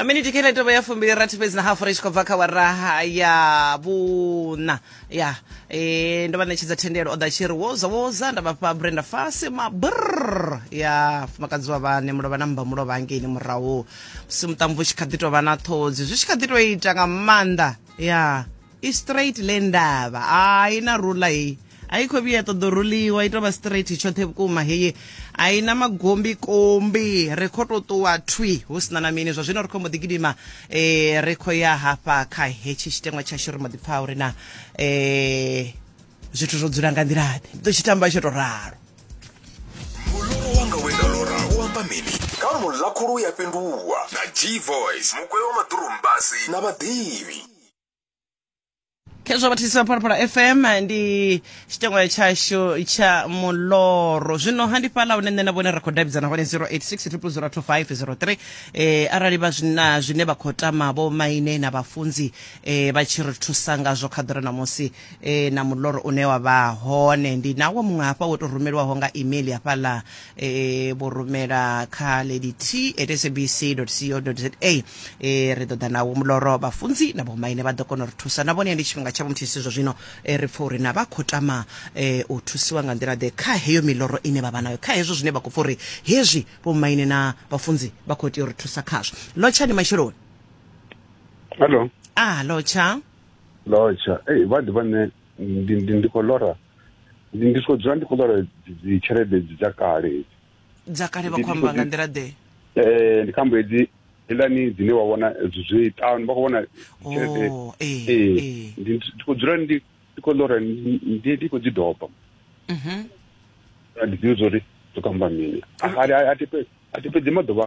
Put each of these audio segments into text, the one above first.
miniti kha ḽetovha ya fumbili rathi fhedzi na hafu ri tshi khou bva kha waraha ya vhuna ya e, ndo vha ṋetshedza thendelo o ḓa tshi ri woza woza nda vhafha brenda fase mabrr ya fumakadzi wa vhane mulovha na mmba mulovha hangeini murahu musi muṱamvu u tshi kha ḓi tou vha na ṱhodzi zwi tshi kha ḓi tou ita nga maanḓa ya i straight le ndavha ai na rula heyi a i khou vhuya ṱoḓo ruliwa i tovha straight tshoṱhe vhukuma heyi a i na magombi kombi ri khou tou ṱuwa thwi hu sina na mini zwa zwino ri khou mbo ḓi gidima um ri khou ya hafha kha hetshi tshiteṅwa tshashu ri mbo ḓi pfha uri na um zwithu zwo dzula nga nḓila ḓe ndi ḓo tshi tamba tsho tou ralo muloro wanga we nda lora u amba mini kha muḽa khulu ya fhenduwa na g voice mugwevho maḓurumbasi na vhaḓivhi khezwo vhathisi vha phalaphala fm ndi tshitengwa tshashu tsha muloro zwino handifhala hune nṋe na vhone ra khou davhidzana hone 0860002503 eh, arali vha zwina zwine vha khou tama vho maine na vhafunzi eh, vha tshi ri thusa ngazwo kha ḓore na musi eh, na muloro une wa vha hone ndi nawo muṅwe hafha wo tou rumeliwaho nga email hafhaḽa e vho rumela kha lady t at sabc co za e ri ḓo ḓa nawo muloro vhafunzi na vhomaine vha ḓo kona u ri thusa na vhone ndi tshifhinga tshavho muthihi zwo zwino e ri pfa uri na vha khou tama e, u thusiwa nga nḓila ḓe kha heyo miloro ine vha vha nayo kha hezwo zwine vha khou pfa uri hezwi vhomaine na vhafunzi vha khou tea u ri thusa khazwo lotshani matsheloni hallo a lotsha lotsha ei vha ḓi vha nṋe ndi- ndi- ndi khou lora ndi ndi soko dzula ndi khou ṱola dzi tshelede dzi dza kale hedzi dza kale vha khou amba nga nḓila ḓe um ndi khambo hedzi heḽani dzine wa vhona zwi ṱanu vha khou vhona tshelede oh, eh, eh. ndi khou dzula ndi ndi khou ḽora ndi ndi khou dzi doba mhm. ndi ḓivha zwa uri dzo kamba mini a ti fhedzi maḓuvha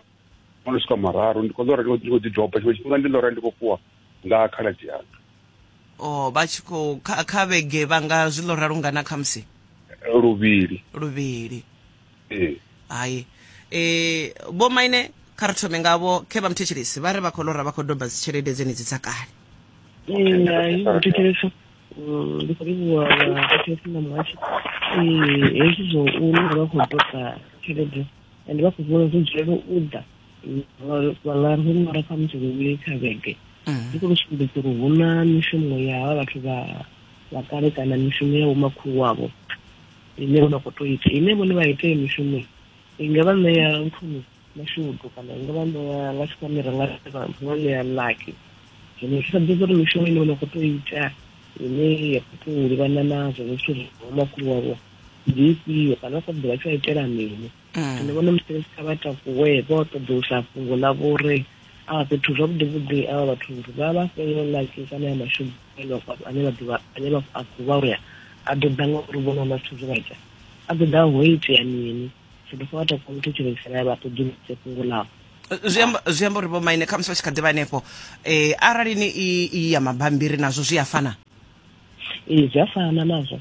o no swika mararu ndi khou ḓora ndi khou ḓi doba tshiṅwe tshifhinga ndi ḽora ndi khou fhiwa nga khaladzi yanga o oh, vha tshi khou kha vhege vha nga zwi ḽora lungana khamusi luvhili luvhili ee hai e vho maine kha ri thome ngavho khe vha muthetshelesi vha ri vha khou lora vha khou doba dzi tshelede dzenedzi dza kale hai muthetshelesi mm, ndi khou livhuwa vhathetshelesi na muhashi hezwi zwo u lora vha khou doba tshelede and vha khou vhona uri dzulela u ḓa vhangari hu mara kha musi luvhili kha vhege mm. ndi khou sumbedza uri hu na mishumo ya havha vhathu vha vha kale kana mishumo ya vhomakhulu wavho ine vho vha khou to ita ine vhone vha ite mishumo i nga vha ṋea nthuni mashudu kana i nga vha ṋea nga tshikwamira nga nga ṋea laki zwino zwi sambedza uri mishumo ine vho vha khou to ita ine ya khou to livhana nazwo zwithu zwa vhomakhulu wavho ndi ifhio kana sa ḓivha tsho itela mini mm. ndi vhona musi kha vha takuwe vho ṱoḓulusa fhungo ḽa vhori a fhethu zwavhuḓi vhuḓi a vhathu uri vha vha fhele laki kana ya mashudu ane vha ane vha ḓivha ane vha a khou vha uya a ḓo ḓa nga uri vhona na zwithu zwe vha ita a ḓo ḓa ho itea mini so ndi fo vha takuwa muthu tshilisela ya vha ṱoḓuluse fhungo ḽavho zwi amba uri vho maine khamusi vha tshi kha ḓivha hanefho um eh, arali ni i ya mabambiri nazwo zwi a fana ee zwi a fana nazwo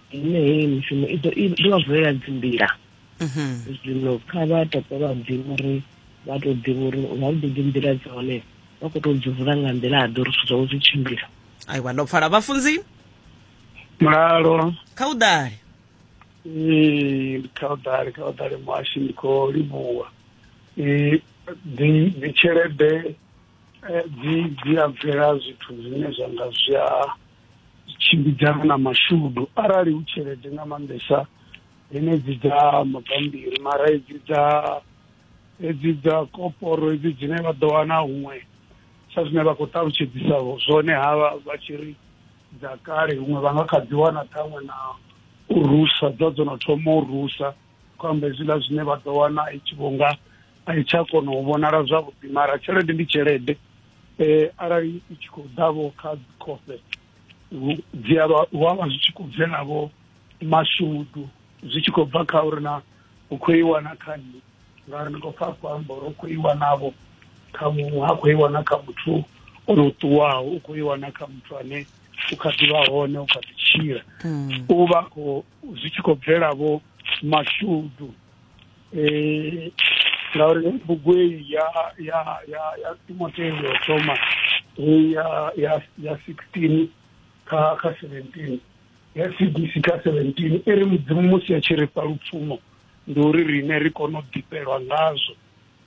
yeneyi mishumo i ḓo vha vulela dzinḓila mhm. zwino kha vha tope vha ḓivha uri vha tou ḓivha uri vha ḓo ḓi nḓila dza hone vha khou tou dzi vula nga nḓila a ḓo uri zwithu zwawe zwi tshimbila aiwa ndo pfala vhafunzi mulalo kha u ḓale ee kha u ḓale kha u ḓale muhashi ndi khou livhuwa ee dzi tshelede eh, dzi dzi a bvela zwithu zwine zwa nga zwi a tshimbidzana na mashudu arali hu tshelede nga maanḓesa henedzi dza mabambiri mara hedzi dza hedzi dza koporo hedzi dzine vha ḓo wana huṅwe sa zwine vha khou ṱalutshedzisa zwone havha vha tshi ri dza kale huṅwe vha nga kha dzi wana ṱhaṅwe na u rusa dza dzo no thoma u rusa khou amba hezwiḽa zwine vha ḓo wana i tshi vhonga a i tsha kona u vhonala zwavhuḓi mara tshelede ndi tshelede um arali i tshi khou ḓavho kha dzikhofhe dzi avha hu avha zwi tshi khou bvelavho mashudu zwi tshi khou bva kha uri na u khou i wana kha nṋe ngauri ndi khou pfa a khou amba uri u khou i wanavho kha muṅwe ha khou i wana kha muthu o no ṱuwaho u khou i wana kha muthu ane u kha ḓivha hone u kha ḓi tshila mm. u vha khou zwi tshi khou bvela vho mashudu um ngauri bugwei ya ya ya ya timoteo yo thoma ya ya ya sixteen kha kha seventeen ya cdc kha seventeen i ri mudzimu musi a tshi ri fha lupfumo ndi uri riṋe ri kone u ḓifhelwa ngazwo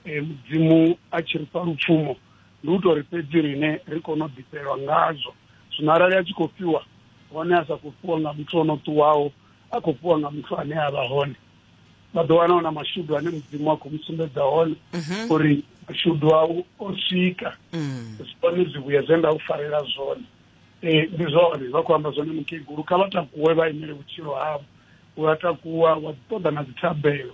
e, mudzimu a tshi ri fha lupfumo ndi u tori fhedzi rine ri kone u ḓifhelwa ngazwo zwino arali a tshi khou fhiwa hone a sa khou fhiwa nga muthu o no ṱuwaho a khou fhiwa nga muthu ane a vha hone vha ḓo wana na mashudu ane mudzimu a khou mu sumbedza hone mhm. uri mashudu au o swika mm. zwone zwivhuya zwe nda u farela zwone e, ndi zwone vha khou amba zwone mukegulu kha vha takuwe vha imele vhutshilo havho u a takuwa wa ṱoḓa na dzithabelo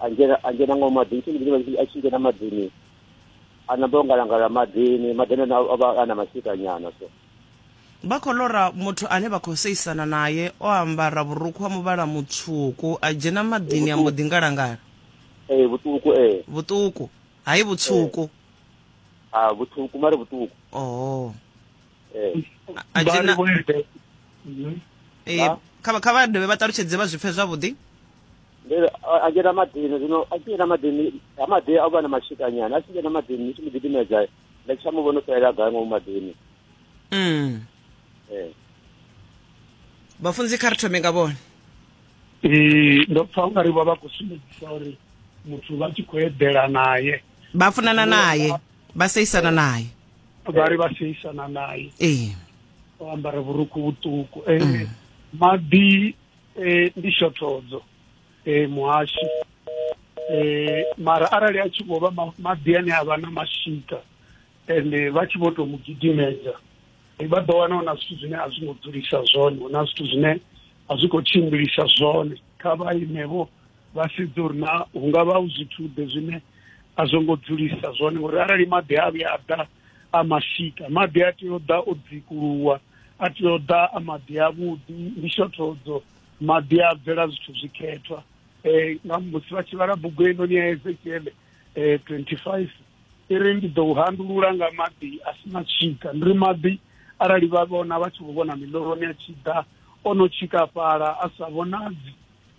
angena angena ngo madini tshini bidzi vha tshi ngena madini a namba ngalangala madini madini ana avha ana mashika nyana so vha khou lora muthu ane vha khou seisana naye o ambara vhurukhu ha muvhala mutswuku a dzhena madini a mbo ḓi ngalangala ee eh, vhuṱuku ee eh. vhuṱuku hai vhutswuku eh. a ah, vhuṱuku mari vhuṱuku oh ee a dzhena mhm. ee kha vha dovhe vha ṱalutshedze vha zwipfe zwavhuḓi ndi a dzhena maḓini zwino a tshi dzhena maḓini ha maḓi a vha na mashika nyana a tshi dzhena maḓini ndi tshi mu gidimedza nda tsha mu vhona u fhelela gai ngomu maḓini mm. ee vhafunzi kha ri thome nga vhone ee ndo pfa ungari vha vha khou sumbedzisa uri muthu vha tshi khou eḓela naye vha funana naye vha seisana naye vha ri vha seisana naye ee o ambara vhurukhu vhuṱuku ee mm. maḓi e, ndi shothodzo e, muhashi e, mara arali a tshi vho vha maḓi ane a vha na mashika ende vha tshi vho tou mu gidimedza vha ḓo wana hu na zwithu zwine a zwi ngo dzulisa zwone hu na zwithu zwine a zwi khou tshimbilisa zwone kha vha imevho vha sedze uri na hu nga vha hu zwithuḓe zwine a zwo ngo dzulisa zwone ngori arali maḓi a vhuya a ḓa a mashika maḓi a tea u ḓa o dzikuluwa a tea u ḓa a maḓi avhuḓi ndi shothodzo maḓi a bvela zwithu zwikhethwa um nga musi vha tshi vhala bugu heinoni ya ezekiele um twenty five i ri ndi ḓo u handulula nga maḓi a si na tshika ndi ri maḓi arali vha vhona vha tshi vho vhona miloroni a tshi ḓa o no tshikafhala a sa vhonadzi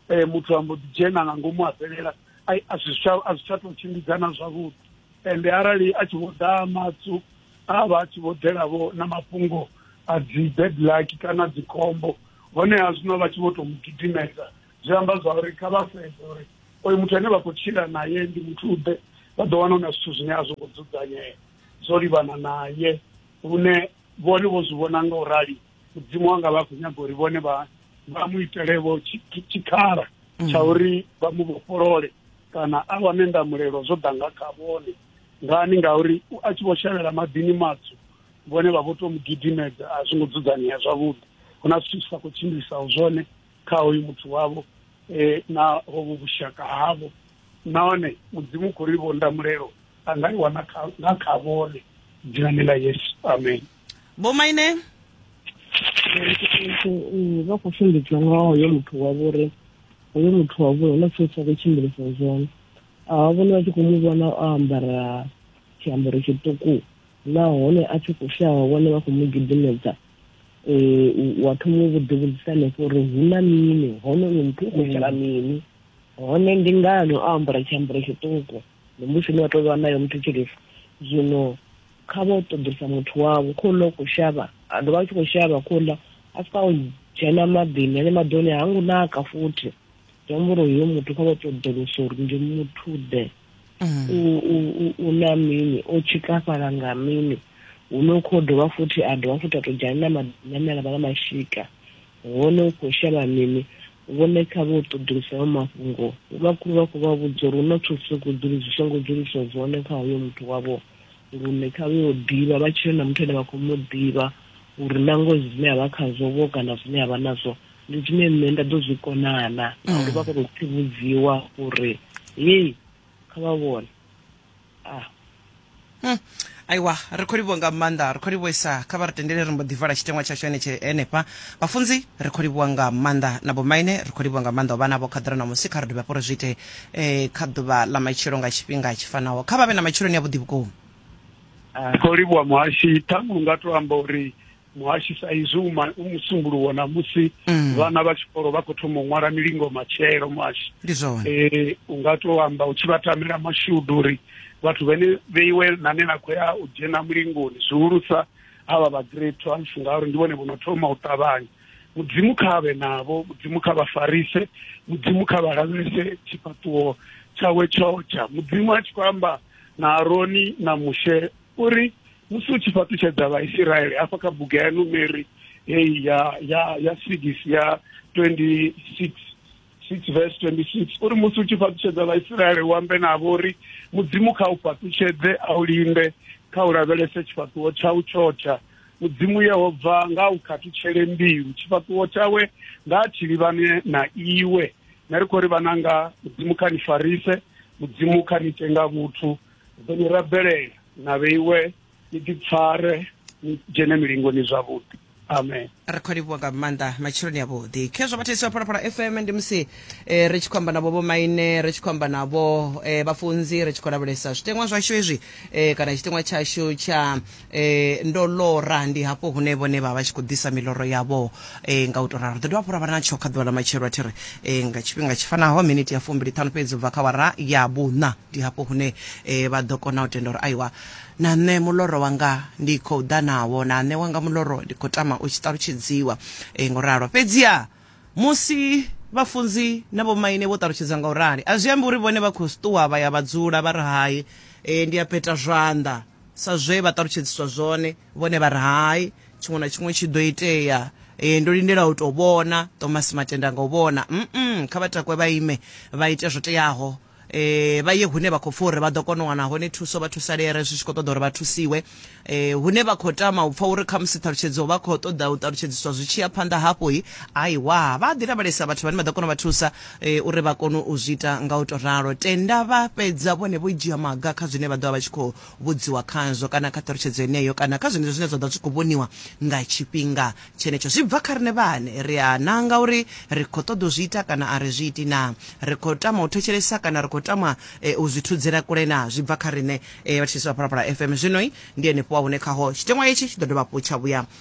um muthu a mbo ḓi dzhena nga ngomu a fhelela a zwi tsha tou tshimbidzana zwavhuḓi ende arali a tshi vho ḓa matsu a vha a tshi vho ḓelavho na mafhungo a dzi bad luck kana dzikhombo honeha zwino vha tshi vho tou mu gidimedza zwi amba zwa uri kha vha sedze uri oyo muthu ane vha khou tshila naye ndi muthu ḓe vha ḓo wana na zwithu zwine a zwo ngo dzudzanyea zwo livhana naye lune vhone vho zwi vhona nga u rali mudzimu wanga vha khou nyaga uri vhone vha vha mu itelevo tshikhala mm. tsha uri vha mu vhofholole kana a wane ndamulelo zwo ḓa nga kha vhone ngani ngauri a tshi vho shavhela maḓini matswu vhone vha vho to mu gidimedza a zwi ngo dzudzanyea zwavhuḓi hu na zwithu zwi sa khou tshimbilisaho zwone kha hoyu muthu wavho um na hovhu vhushaka havho nahone mudzimu u khou ri vho ndamulelo a nga i wana nga kha vhone dzinani ḽa yesu amen vho maine vha khou funḓedzwa nga hoyo muthu wa vhori hoyo muthu wa vhori huna tshee tsha khou tshimbilisa zwone a vhone vha tshi khou mu vhona o ambara tshiambaro tshiṱuku nahone a tshi khou shavha vhone vha khou mu gidimedza um wa thoma u vhuḓivhudzisa hanefho uri hu na mini hone uyo muthu u khou itela mini hone ndi ngani o ambara tshiambaro tshiṱuku ndi musi ni wa tou vha nayo muthetshelesi zwino kha vho ṱoḓisa muthu wavho kho ḽa u khou shavha a dovha a tshi khou shavha kho ḽa a swika o dzhena maḓini ane maḓi one ha ngo naka futhi zwi amba uri uyo muthu kha vho ṱoḓulusa uri ndi muthu ḓe mm. u na mini o tshikafhala nga mini hune u khou dovha futhi a dovha futhi a tou dzhena na maḓini ane a vha na mashika Hone u khou shavha mini? Vhone kha vhe u ṱoḓulusa hayo mafhungo. Vhomakhulu vha khou vha vhudza uri hu na zwithu zwi songo dzuli zwi songo dzuliswa zwone kha hoyo muthu wavho, lune kha vhe u ḓivha vha tshile na muthu ane vha khou mu ḓivha uri na ngoho zwine a vha khazwo vho kana zwine a vha nazwo ndi zwine nṋe nda ḓo zwi konana na uri vha kone u tsivhudziwa uri hei kha vha vhone ah. Hmm. aiwa ri khou livhuwa nga maanḓa ri khou livhuisa kha vha ri tendele ri mbo ḓi vala tshitengwa tshashu henetshe henefha vhafunzi ri khou livhuwa nga maanḓa na bomaine ri khou livhuwa nga maanḓa u vha navho kha ḓira na musi kha ri dovhe hafho ri zwi ite um kha ḓuvha ḽa matshilo nga tshifhinga tshi fanaho kha vha vhe na matshiloni a vhuḓi vhukuma ri khou livhuwa muhashi ṱhaṅwe u nga to amba uri muhashi sa izwi u ma- u musumbuluwo na musi Mm. vhana vha tshikolo vha khou thoma u ṅwala milingo matshelo muhashi ndi zwone eh u nga to amba u tshi vha tamela mashudu uri vhathu vhene vheiwe nane na khou ya u dzhena mulingoni zwihulusa havha vha grade twelve ngauri ndi vhone vho no thoma u ṱavhanya mudzimu kha vhe navho mudzimu kha vha farise mudzimu kha vha lavhelese tshifhaṱuwo tshawe tshotsha mudzimu a tshi khou amba na aroni na mushe uri musi u tshi fhaṱutshedza vhaisiraele hafha kha bugu ya numeri heyi ya ya ya six ya 26 6 verse 26 uri musi u tshi fhaṱutshedza vhaisiraele u ambe navho uri mudzimu kha u fhaṱutshedze a u linde kha u lavhelese tshifhaṱuwo tsha u tshotsha mudzimu yehova nga u khathutshele mbilu tshifhaṱuwo tshawe nga a tshilivhane na iwe na ri khou ri vhananga mudzimu kha ni farise mudzimu kha ni ite nga vhuthu ḓo ni rabelela na vheiwe ni ḓipfare ni dzhene milingoni zwavhuḓi amen ri khou livhuwa nga maanḓa matsheloni avhuḓi khezwo vhathesi vha phalaphala fm ndi musi eh, ri tshi khou amba navho vhomaine ri tshi khou amba navho eh, vhafunzi ri tshi khou lavhelesa zwiteṅwa zwashu hezwi eh, kana tshiteṅwa tshashu tsha E, ndo lora, ndi hafho hune vhone vha vha tshi khou ḓisa miloro yavho. E, nga u tou ralo, ri ḓo dovha hafhu ra vha na tsho kha ḓuvha ḽa matshelo, a thi ri, e, nga tshifhinga tshi fanaho, miniti ya fumbili ṱhanu fhedzi u bva kha wara ya vhuṋa. Ndi hafho hune e, vha ḓo kona u tenda uri, Aiwa, na nṋe muloro wanga ndi khou ḓa nawo, na nṋe wanga muloro ndi khou tama u tshi ṱalutshedziwa, e, nga u ralo. Fhedziha musi vhafunzi na vhomaine vho ṱalutshedza nga u rali, a zwi ambi uri vhone vha khou si ṱuwa vha ya vha dzula vha re hai, e, ndi a peta zwanḓa. sa zwe vha ṱalutshedziswa zwone vhone vha ri hai tshiṅwe na tshiṅwe tshi ḓo itea e, ndo lindela u tou vhona tomasi matenda nga u vhona mm kha vha takwe vha ime vha ite zwo teaho eh vha ye hune vha khou pfa uri vha ḓo kona u wana hone thuso vha thusalere zwi tshi khou ṱoḓa uri vha thusiwe eh hune vha khou tama u pfa uri kha musi ṱhalutshedzo vha khou ṱoḓa u ṱalutshedziswa zwi tshi ya phanḓa hafho hi aiwa vha ḓi lavhelesa vhathu vhane vha ḓo kona u vha thusa Uri vha kone u zwi ita nga u tou ralo, tenda vha fhedza vhone vho dzhia maga kha zwine vha ḓo vha vha tshi khou vhudziwa khazwo kana kha ṱhalutshedzo yeneyo kana kha zwenezwo zwine zwa ḓo vha zwi khou vhoniwa nga tshifhinga tshenetsho. Zwi bva kha riṋe vhaṋe. Ri a nanga uri ri khou ṱoḓa u zwi ita kana a ri zwi iti naa? Ri khou tama u thetshelesa kana ri khou tama u zwi thudzela kule naa? Zwi bva kha riṋe. Vhatshutshisi vha Phalaphala FM zwino ndi henefho hune khaho tshiteṅwa itshi tshi ḓo dovha hafhu tsha vhuya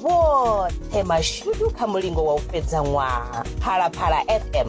vhoṱhe mashudu kha mulingo wa u fhedza ṅwaha phalaphala fm